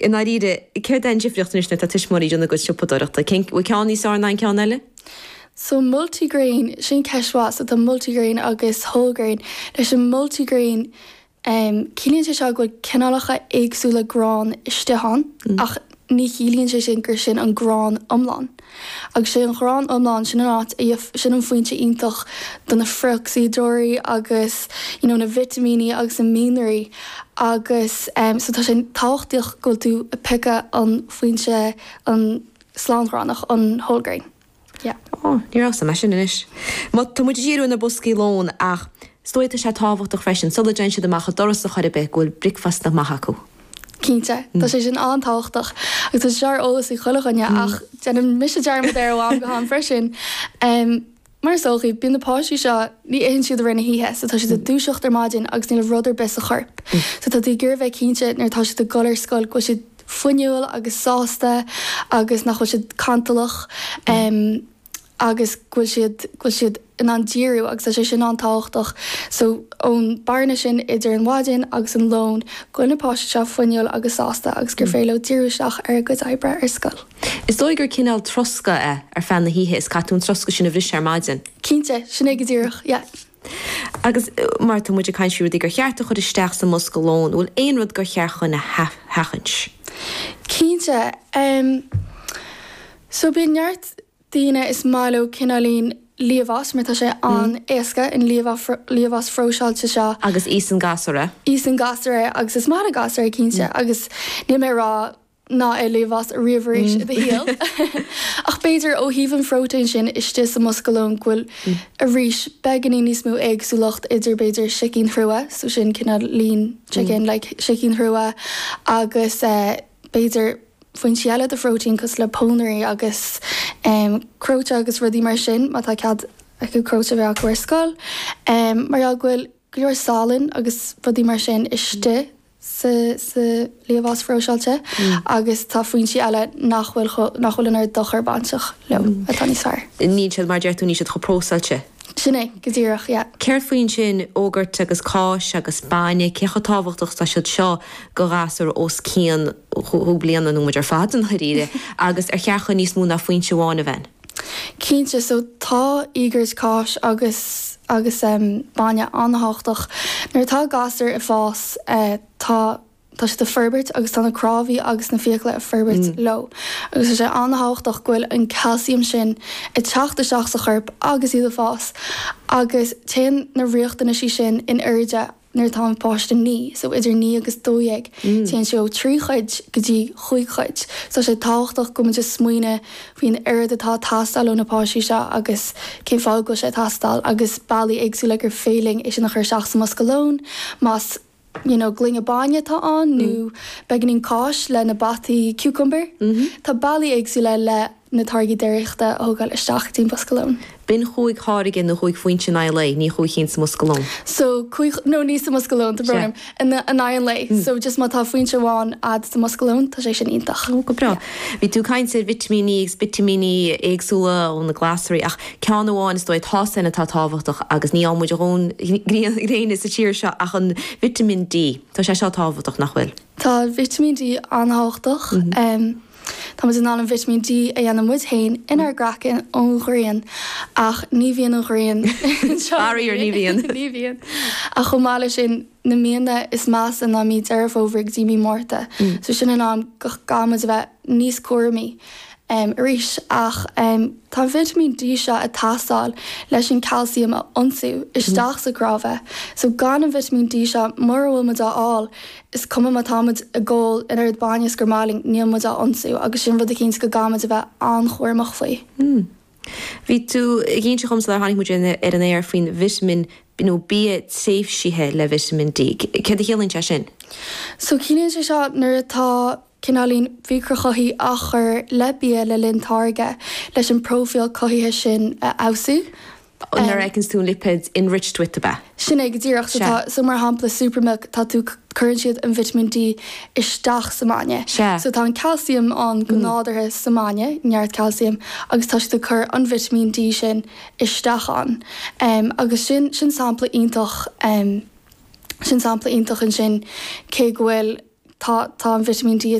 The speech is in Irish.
I ndáiríre, céard é an difríocht anois nuair atá tuismitheoirí ag déanamh a gcuid siopadóireachta? Cén, bhfuil ceann níos fearr ná an ceann eile? So multigrain, sin ceist mhaith, so tá multigrain agus whole grain. Leis an multigrain, ciallaíonn sé seo go bhfuil cineálacha éagsúla grán istigh ann ach ní chiallaíonn sé sin gur sin an grán iomlán. Agus sé an grán iomlán, sin an áit, sin an foinse iontach do na frithocsaídeoirí agus you know na vitimíní agus na mianraí agus em so tá sé tábhachtach go bhfuil tú ag piocadh an foinse an slángránach an whole grain. Yeah. Ó, ní raibh 's agam é sin anois. Má tá muid ag díriú ar na boscaí lóin ach 's dóigh tá sé tábhachtach freisin sula dtéann siad amach an doras ar chor ar bith go bhfuil bricfeasta maith acu. Cinnte, tá sé sin an-tábhachtach agus tá sé seo ar eolas ag chuile dhuine ach déanaim mise dearmad air ó am go ham freisin. Mar is dóichí, bíonn na páistí seo, ní itheann siad i rith na hoíche so tá siad ag dúiseacht ar maidin agus níl rud ar bith sa chorp. So tá tú ag iarraidh bheith cinnte nuair atá siad ag dul ar scoil go bhfuil siad fuinniúil agus sásta agus nach bhfuil siad cantalach. agus go bhfuil siad go bhfuil siad in ann díriú agus tá sé sin an-tábhachtach so ón bearna sin idir an mhaidin agus an lón go bhfuil na páistí seo fuinniúil agus sásta agus gur féidir leo díriú isteach ar a gcuid oibre ar scoil. Is dóigh gur cineál troscadh é ar feadh na hoíche is caithfidh tú an troscadh sin a bhriseadh ar maidin. Cinnte, sin é go díreach, yeah. Agus mar atá muid ag caint faoi rudaí gur cheart a chur isteach sa mbosca lóin, an bhfuil aon rud gur cheart dúinn a sheachaint? Cinnte, em. So bíonn neart daoine is maith leo cineáilín liamhás mar tá sé an-éasca an liamhás phróiseáilte seo. Agus íosann gasúir é. Íosann gasúir é agus is maith le gasúir é cinnte agus níl mé ag rá ná hith liamhás ariamh arís i do shaol ach b'fhéidir ó thaobh an phróitéin sin istigh sa mbosca lóin go bhfuil arís beagáinín níos mó éagsúlacht idir b'fhéidir sicín thrua, so sin cineáilín chicken like sicín thrua, agus eh. b'fhéidir, foinsí eile de phróitéin cosúil le pónairí agus cnóite agus rudaí mar sin má tá cead acu cnóite a bheith acu ar scoil mar gheall go bhfuil go leor salainn agus rudaí mar sin istigh sa liamhás phróiseáilte agus tá foinsí eile nach bhfuil an oiread dochair bainteach leo atá níos fearr. Níl siad, mar a deir tú, níl siad chomh próiseáilte. Sin é, go díreach, yeah. Céard faoin sin, iógairt agus cáis agus bainne, cé chomh tábhachtach atá siad seo do ghasúir os cionn dhá bhliain nó muid ar fad dháiríre agus ar cheart dúinn níos mó ná foinse amháin a bheith? Cinnte, so tá iógairt, cáis agus agus bainne an-tábhachtach. Nuair atá gasúr ag fás tá tá siad ag forbairt agus tá na cnámhaí agus na fiacla ag forbairt leo agus tá sé an-tábhachtach go bhfuil an calcium sin ag teacht isteach sa chorp agus iad ag fás agus téann na riachtanaisí sin in airde nuair atá an páiste naoi so idir naoi agus dó dhéag téann sé ó trí chuid go dtí chúig chuid so tá sé tábhachtach go bhfuil muid ag smaoineamh faoin oiread atá ag teastáil ó na páistí seo agus cén fáth go bhfuil sé ag teastáil agus bealaí éagsúla gur féidir linn é sin a chur isteach sa mbosca lón más you know gloine bainne atá ann nó beagáinín cáis le na bataí cucumber. Tá bealaí éagsúla le na táirgí déiríochta a thógáil isteach dtí'n mbosca lón. B'in chúig tháirge nó chúig phointe in aghaidh an lae, ní chúig chinn sa mbosca lón. So cúig nó ní sa mbosca lón, tá brón orm, in aghaidh an lae. So just má tá foinse amháin a'd sa mbosca lón, tá sé sin iontach. Go breá. Bhí tú ag caint ar vitimíní agus vitimíní éagsúla ó na glasraí ach ceann amháin is dóigh, tá sé atá tábhachtach agus ní fhaigheann muid ár ndóthain gréine sa tír seo ach an vitamin D. Tá sé seo tábhachtach, nach bhfuil? Tá vitamin D an-tábhachtach. Tá muid in ann an vitamin D a dhéanamh muid féin inár gcraiceann ón ghrian ach ní bhíonn an ghrian anseo. Faraor, ní bhíonn. Ní bhíonn. Ach chomh maith leis sin. na míonna is measa ná mí Deireadh Fómhair go dtí mí Márta so sin an am go gcaithfidh muid a bheith níos cúramaí arís ach tá an vitimín D seo ag teastáil leis an calcium a ionsú isteach sa gcnámha so gan an vitimín D seo mura bhfuil muid á fháil is cuma má tá muid ag ól an oiread bainne is gur maith linn níl muid á ionsú agus sin rud eicínt go gcaithfidh muid a bheith an-chúramach faoi. Bhí tú ag inse dhom sular tháinig muid ar an aer faoin Vitamin D, nó bia saibhrithe le Vitamin D. Céard a chiallaíonn sé sin? So ciallaíonn sé seo nuair atá cineálacha micreachothaitheach á chur le bia le linn táirgeadh leis an bpróifíl cothaithe sin a fheabhsú. Nuair a fheiceanns tú an lipéad Enriched with ab ea. Sin é go díreach. So tá, so mar shampla Super Milk, tá tú, cuireann siad an vitimín D isteach sa mbainne. So tá an calcium ann go nádúrtha sa mbainne, neart calcium, agus tá siad ag cur an vitimín D sin isteach ann. Em, agus sin, sin sampla iontach, em, sin sampla iontach ansin cé go bhfuil, tá, tá an vitimín D, tá.